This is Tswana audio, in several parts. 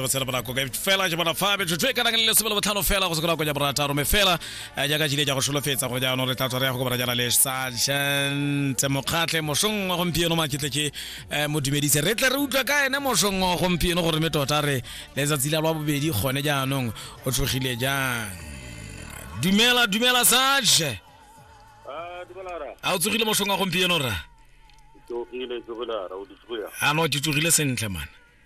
re tshela bonako ka fela je bona fa be tshwe ka le sebelo botlhano fela go sekona go ja bona taro me fela eh, ja ka jile ja go sholofetsa go ja no re tla tswa ya go bona jana le sergeant mokgatle moshong wa gompieno ma kitle ke eh, mo dumedise re tle re utlwa ka ene moshong wa gompieno gore me tota re le za tsila lwa bobedi gone ja anong o tshogile jang dumela dumela sage ah dumela ra a o tsogile moshong wa gompieno ra tsogile tsogile ra o di tsogile ano ke tsogile sentle mana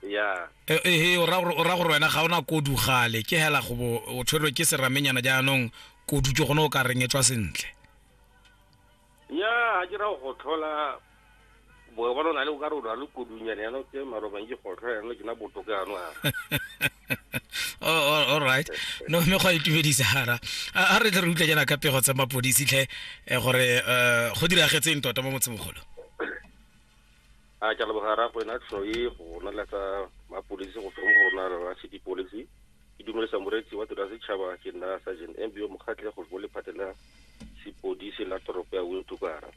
ya E- ehe o ra gore o ra gore wena ga o na kodu gale ke hela go bo o tshwerwe ke seramenyana jaanong kodu ke gone o ka reng e tswa sentle ya ga ke ra go tlhola boe bona o na le o ka re o na le kodunyana yana ke marobang ke gotlho yana ke na botoka yano a Oh, all- all right no mme go a itumedisa hara a a re tle re utlwa jaana ka pego tsa mapodisi tlhe eh, gore eh, go diragetseng tota mo motsemogolo a ke leboga ra go ena tlhoe go roneletsa mapodisi go feng go rona la city policy ke dumelisa moreetsi wa tiro ya setšhaba ke nna sergeant mbio mokgatlhe go bo lephate la sepodisi la toropo ya wintukara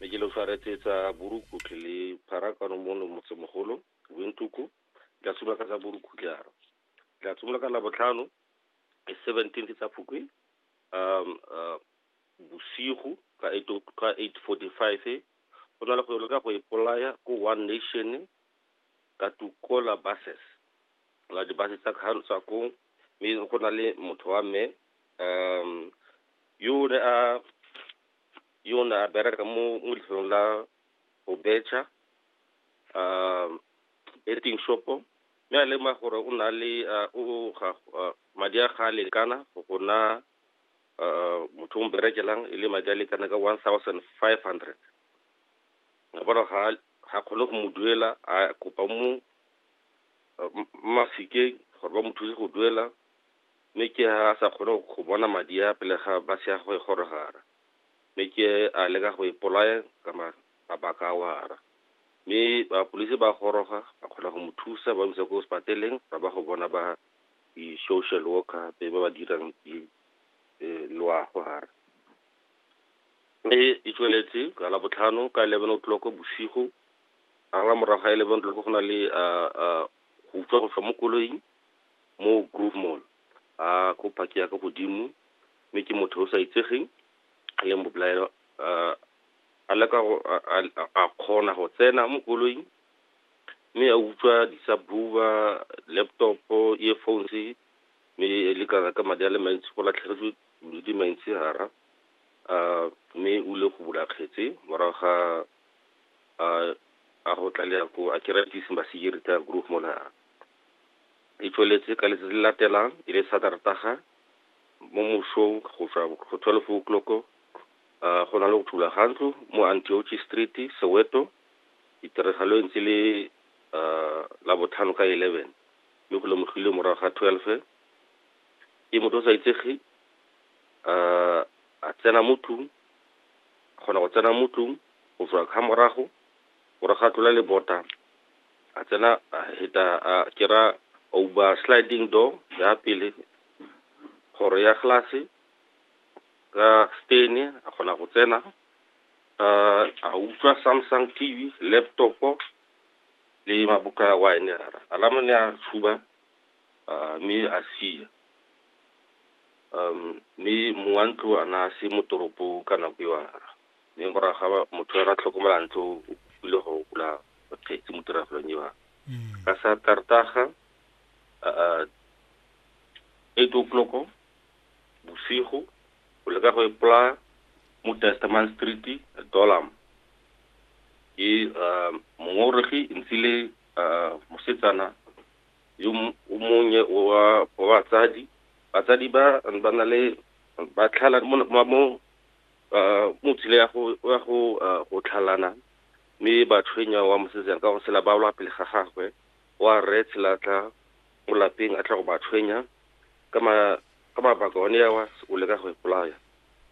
mme ke le tshwaretse tsa borukhutlhe le pharakano mono motsemogolo wintuku tla simolola ka tsa borukhutlhara tla simolola ka labotlhano e seventeen ke tsa phukwi um uh, Bosigo ka 8:45 go na le go leka go ipolaya ko One Nation ka tuko la buses la dibase tsa kgantsha ko mme go na le motho wa me um yo ne a yo ne a bereka mo mo lefelong la go betšha um betting shop-o mme a lema gore o na le o ga madi a ga a lekana go na uh, motho o mberekelang e le madi a lekana ka one thousand five hundred ga bona ga ga kgone go mo duela a kopa mo mafikeng gore ba mo thuse go duela mme ke a sa kgone go bona madi a pele ga ba se ya go e gorogara mme ke a leka go ipolaya ka mabaka a wara mme bapolisi ba goroga ba kgona go mo thusa ba mo isa ko sepateleng ba ba go bona ba di-social worker gape ba ba dirang di eh, loago gare e e tsweletse ka la botlhano ka eleven o'clock bosigo a la morago ga eleven o'clock go na le ah, ah, go utswa go tswa mo koloing mo groove mall a ko phake ya ka godimo mme ke motho o sa itsegeng a leng bobolaelo ah, a leka go a- a- a kgona go tsena mo koloing Mme a utswa di-subwoofer, laptop-o, earphones-e, mme e le kana ka madi a le mantsi, go latlhegetswe le di maintsehara. Mme o ile go bula kgetse morago ga a go tlalela ko Archritis Maseje Retired Group mo Lara. E tsweletse ka letsatsi le latelang, e le Sateretaga, mo mosong go tswa go twelve o' clock-o, go na le go thula ga ntlo mo Antiochi Street, Soweto, Ditiragalo e ntse e le Labotlhano ka 11 mme go lemogilwe morago ga 12 e motho o sa itsege a tsena mo tlung, a kgona go tsena mo tlung go tswa ka morago, morago a tlola lebota, a tsena a heta a kera a uba sliding door ya pele, kgoro ya glass ka stain a kgona go tsena. A utlwa Samsung T_V, laptop-o le maboka a wine. Alarm-o ne a tshuba mme a sia. Mme mongwe wa ntlo a ne a se mo toropong ka nako eo. Mme morago ga motho a tlhokomela ntlo o kopile go bula kgetsi mo tiragalong eo. Ka Sateretaga eight o' clock-o. bosigo, o leka go ipolaya mo Testament Street, Dolam. Ke uh, mongongoregi ntsile uh, mosetsana yo m- o monnye wa wa batsadi batsadi ba ba na le ba tlhala mo mo- mo uh, mo tshile ya go ya go uh, go tlhalana mme ba tshwenya wa mosetsana ka go sela ba ola pele ga gagwe wa rre tshelatla mo lapeng a tla go ba tshwenya ka ma, ka mabaka one ao a o leka go ipolaya.